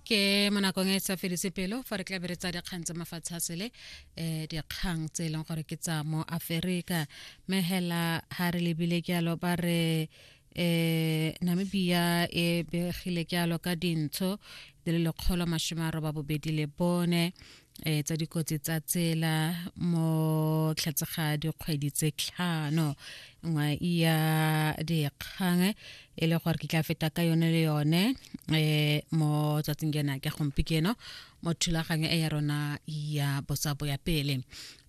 ke mo nakong e sa fedise pelo fa re tlabere tsa dikgang tsa mafatshe a sele um dikgang tse e leng gore ke tsa mo aferika mme hela ga re lebile ke alo ba re um namibia e begile ke alo ka dintsho di le lekgolo masome a roba bobedi le bone eh tsa dikotsi tsa tsela mo tlhatsega dikgwedi tse tlhano nngwe ya dikgang e le gore ke tla feta ka yone le yone eh mo tsatsing kena ke gompieno mo thulaganyo e ya rona ya bosabo ya pele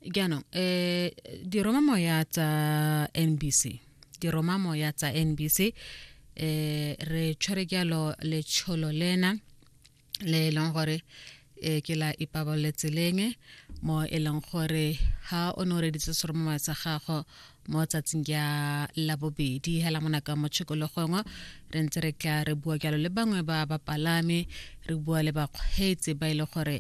jaanong eh diroma moya tsa NBC diroma moya tsa NBC eh re tshwere jalo letsholo lena le e leng gore e ke la ipabalole tseleng mo e leng gore ha o ne o reditse seromongwa sa gago mo tsatsing ya labobedi hela mona ka mo tshikologongwe re ntse re tla re bua jalo le bangwe ba bapalami re bua le bakgweetsi ba e le gore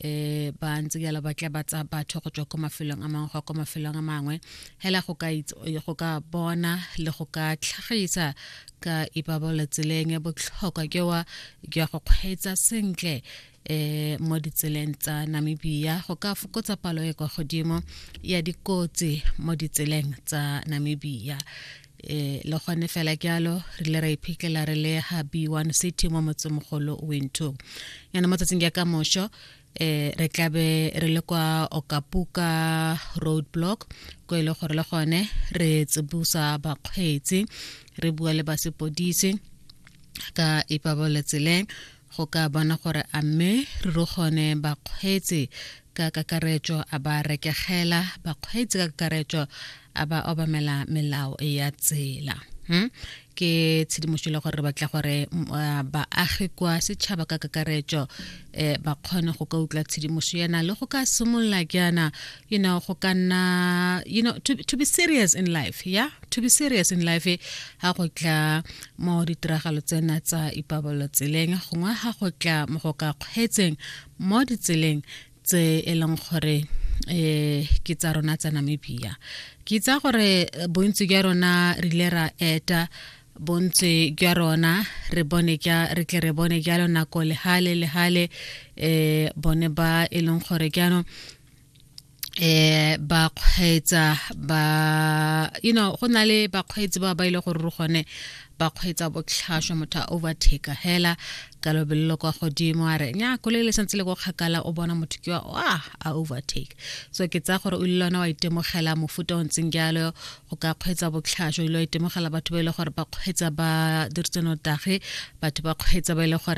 um ba ntse jalo ba tla ba tsa batho go tswa ko mafelong a mangwe go ko mafelong a mangwe hela go ka bona le go ka tlhagisa ka ipabole tseleng ya botlhokwa ke wa ke ya go kgweetsa sentle eh mo ditseleng tsa Namibia go ka fokotsa palo e kwa godimo ya dikotsi mo ditseleng tsa Namibia eh le gone fela ke alo re le ra iphitlhela re le ha B1 City mo motsemogolo Winto yana mo tsatsing ya ka mosho eh re tlabe re le kwa okapuka roadblock ko e le gore le gone re tsibusa bakgweetsi re bua le basepodisi ka ipabaletsele go ka bona gore a mme re re gone bakgweetsi ka kakaretso a ba rekegela bakgweetsi ka kakaretso a ba obamela melao ya tsela hmm? ke tshedimošo le gore re batla gore baagi kwa setšhaba ka kakaretso um ba kgone go ka utlwa tshedimošo yana le go ka simolola jaana you know go ka nna you know to, to be serious in life yeah to be serious in life ga go tla mo ditiragalo tsena tsa ipabalelo tseleng gongwe ga go tla mo go ka kgweetseng mo ditseleng tse e leng gore eh ke tsa rona tsa Namibia ke tsa gore eh, bontsi jwa rona re ile ra eta bontsi jwa rona re bone ja re tle re bone jalo nako lehale lehale eh bone ba e leng gore jaanong eh ba kgweetsa ba you know go na le bakgweetsi ba ba ile gore re gone ba kgweetsa botlhaswa motho a overtake hela ka lobelelo kwa godimo a re nya koloi le santse le ko kgakala o bona motho ke wa a overtake so ke tsaya gore o ile lona wa itemogela mofuta o ntseng jalo go ka kgweetsa botlhaswa o ile wa itemogela batho ba e le gore ba kgweetsa ba diritse notage batho ba kgweetsa ba e le gore